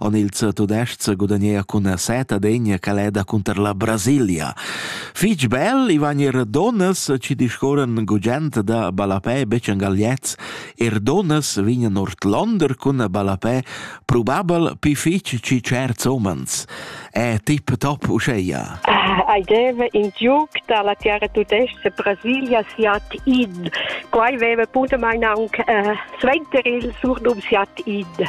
En ils tudestgs gudagnea cun seta degna caleda cunter la Brasilia. Fitg bel i van er donnas ci discorren gugent da balapè bec en gagliez, er donnas vignan ortlonder cun balapè probabel pi fitg ci certs omens. È tip top uscheia? Ai deve in giuc dalla terra tudestga Brasilia siat id. Quai veve punto mein aunc äh, suenter il surdum siat id.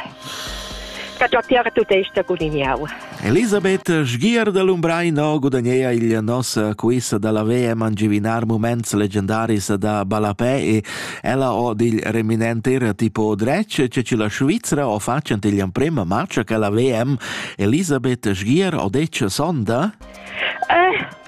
Ca già tiara tudesta guliniau. Elisabeth Sgier da Lumbreino gudagnea il nossa quiz dalla VM angivinar moments legendaris da ballapè e ella o dil reminenter tipo dretg che ci la Svizzera o facent igl emprema match che la VM Elisabeth Sgier o dec sonda? Eh,